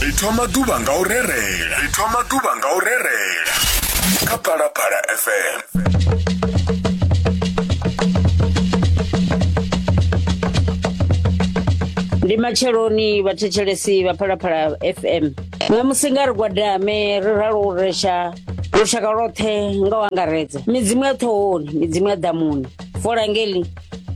ri thoma ḓuvha nga u rerela ri thoma ḓuvha nga u rerela kha phalaphala fm ndi matsheloni vhathetshelesi vha phalaphala fm ṋamusi nga ri gwadame ri ralo u resha lushaka lwoṱhe nga u angaredza midzimu ya ṱhohoni midzimu ya ḓamuni fola ngeli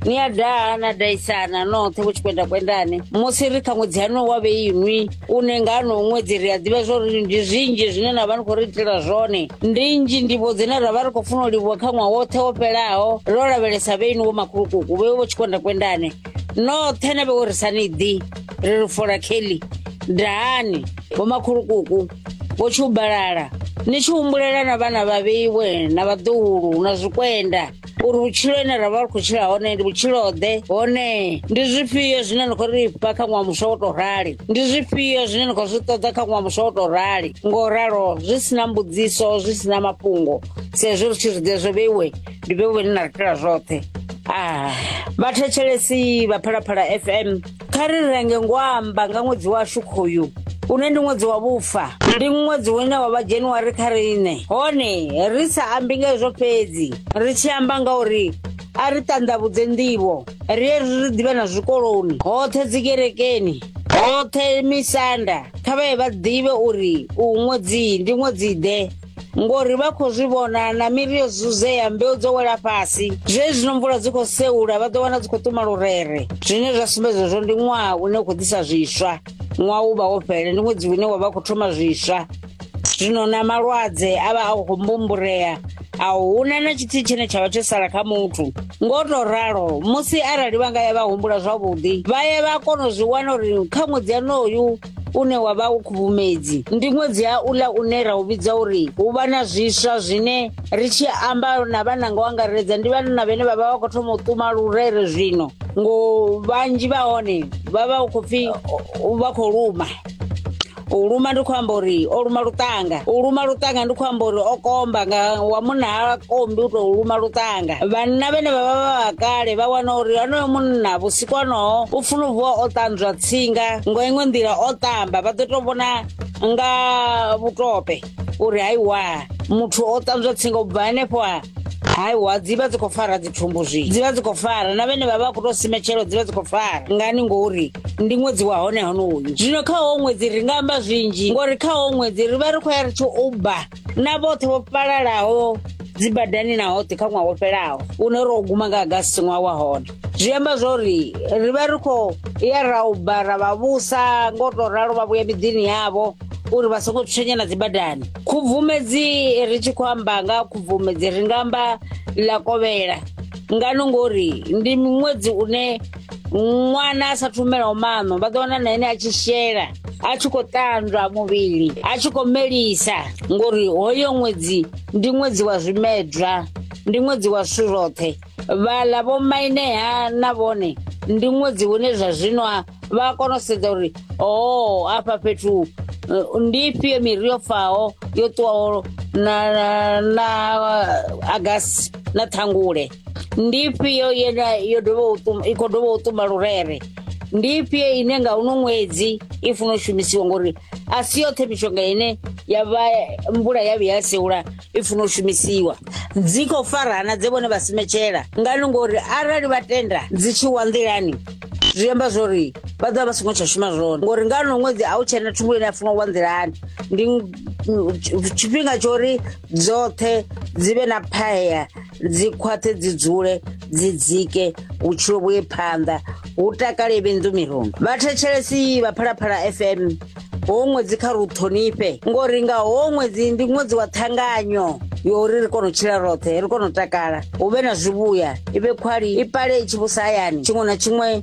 ni a daha na daisana noṱhe hu tshi kwenda kwendani musi ri kha ṅwedzi hano wa vheinwi une nga ano ṅwedzi ri a ḓivha zwa uri ndi zwinzhi zwine na vha ni khou ri itela zwone ndi nzhi ndivho dzine ra vha ri khou funa u livhuwa kha ṅwaha woṱhe wo fhelaho ro lavhelesa vheinwi wo makhulukuku vhe vho tshi kwenda kwendani noṱhe na vhe wo ri sa ni ḓi ri ri fola kelly dahani vho makhulukuku vho tshubalala ni tshi humbulela na vhana vhavheiwe na vhaḓuhulu na zwikwenda uri vhutshilo ine ra vha ri khou tshila hone ndi vhutshilo-ḓe hone ndi zwifhio zwine ni khou ri fha kha ṅwaha muswa wo tou rali ndi zwifhio zwine ni khou zwi ṱoḓa kha ṅwaha muswa wo tou rali ngo ralo zwi si na mbudziso zwi si na mafhungo sa ezwi ri tshi zwiḓe zwo vheiwe ndi vheiwe ni na ri tela zwoṱhe a vhathetshelesi vha phalaphala fm kha ri renge ngwamba nga ṅwedzi washu khoyu une ndi ṅwedzi wa vhufa ndi ṅwedzi une wa vha januwari kha riṋe hone ri sa ambi nga hezwo fhedzi ri tshi amba nga uri a ri ṱanḓavhudze nḓivho ri ye ri ḓivhe na zwikoloni hoṱhe dzikerekeni hoṱhe misanda kha vhaye vha ḓivhe uri u ṅwedzi ndi ṅwedzi ḓe ngori vha khou zwi vhona na miri yo zuzea mbeu dzo wela fhasi zwezwino mvula dzi khou seula vha ḓo wana dzi khou tuma lurere zwine zwa sumbedza zwo ndi ṅwaha une u khou ḓisa zwiswa ṅwaha u vha wo fhele ndi ṅwedzi une wa vha khou thoma zwiswa zwino na malwadze a vha a khou mbumburea a huna na tshithihi tshine tsha vha tsho sala kha muthu ngo to ralo musi arali vha nga ya vha humbula zwavhuḓi vha ye vha kona u zwi wana uri kha ṅwedzi yanoyu une wa vha u khubvumedzi ndi ṅwedzi ha uḽa une ra u vhidza uri hu vha na zwiswa zwine ri tshi amba na vhananga u angaredza ndi vhanna vhene vha vha vha khou thoma u ṱuma lurere zwino ngo vhanzhi vha hone vha vha u khou pfhi vha khou luma u luma ndi khou amba uri o luma luṱanga u luma luṱanga ndi khou amba uri o komba nga wa munna ha kombi u tou luma luṱanga vhanna vhene vha vha vha vha kale vha wana uri onoyo munna vhusiku honoho u funa u vuwa o ṱanzwa tsinga ngo iṅwe nḓila o ṱamba vha ḓo to vhona nga vhutope uri haiwa muthu o ṱanzwa tsinga u bva henefho ha haiwa dzi vha dzi khou fara dzithumbu zwi dzi vha dzi khou fara na vhene vha vha khou tou simetshelo dzi vha dzi khou fara ngani ngori ndi ṅwedzi wa hone honoyu zwino kha howo ṅwedzi ri nga amba zwinzhi ngori kha howo ṅwedzi ri vha ri khou ya ri tshi uba na vhoṱhe vho fhalalaho dzibadani na hoṱhe kha ṅwaha wo fhelaho une ro guma nga agasi ṅwaha wa hone zwi amba zwo ri ri vha ri khou ya ra u ba ra vha vhusa ngo tou ralo vha vhuya miḓini yavho uri vha songo tshenya na dzibadani khubvumedzi ri tshi khou amba nga khubvumedzi ri nga amba ḽa kovhela ngano ngori ndi miṅwedzi une ṅwana a sa thumelaho maṋo vha ḓo wana na ene a tshi shela a tshi khou ṱanzwa muvhili a tshi khou melisa ngori hoyo ṅwedzi ndi ṅwedzi wa zwimedzwa ndi ṅwedzi wa zwithu zwoṱhe vhaḽa vho mainea na vhone ndi ṅwedzi hune zwa zwino a- vha a kona u sedza uri o afha fhethu eh, ndi ifhio miri yo faho yo ṱuwaho na, na, na agasi na ṱhangule ndi ifhio ye na- yo dovha u ṱum- i khou dovha u ṱuma lurere ndi ifhio ine nga uno ṅwedzi i funa u shumisiwa ngori a si yoṱhe mishonga ine ya vha mvula ya vhuya ya seula i funa u shumisiwa dzi khou farana dze vhone vha simetshela ngani ngori arali vha tenda dzi tshi wa nḓilani zwi amba zwori vha ḓovha vha songo tsha shuma zwone ngori nga no ṅwedzi a u tshena thungo ine ya funa u wa nḓilani ndi mm, tshifhinga tsho uri dzoṱhe dzi vhe na phaya dzi khwaṱhe dzi dzule dzi dzike vhutshilo vhuye phanḓa hu takale vhenḓu mirundu vhathetshelesi vha phalaphala fm ho ṅwedzi kha ru ṱhonifhe ngori nga ho ṅwedzi ndi ṅwedzi wa ṱhanganyo yori ri kone u tshila roṱhe ri kone u takala hu vhe na zwivhuya i vhe khwali i pale i tshi vhusa hayani tshiṅwe na tshiṅwe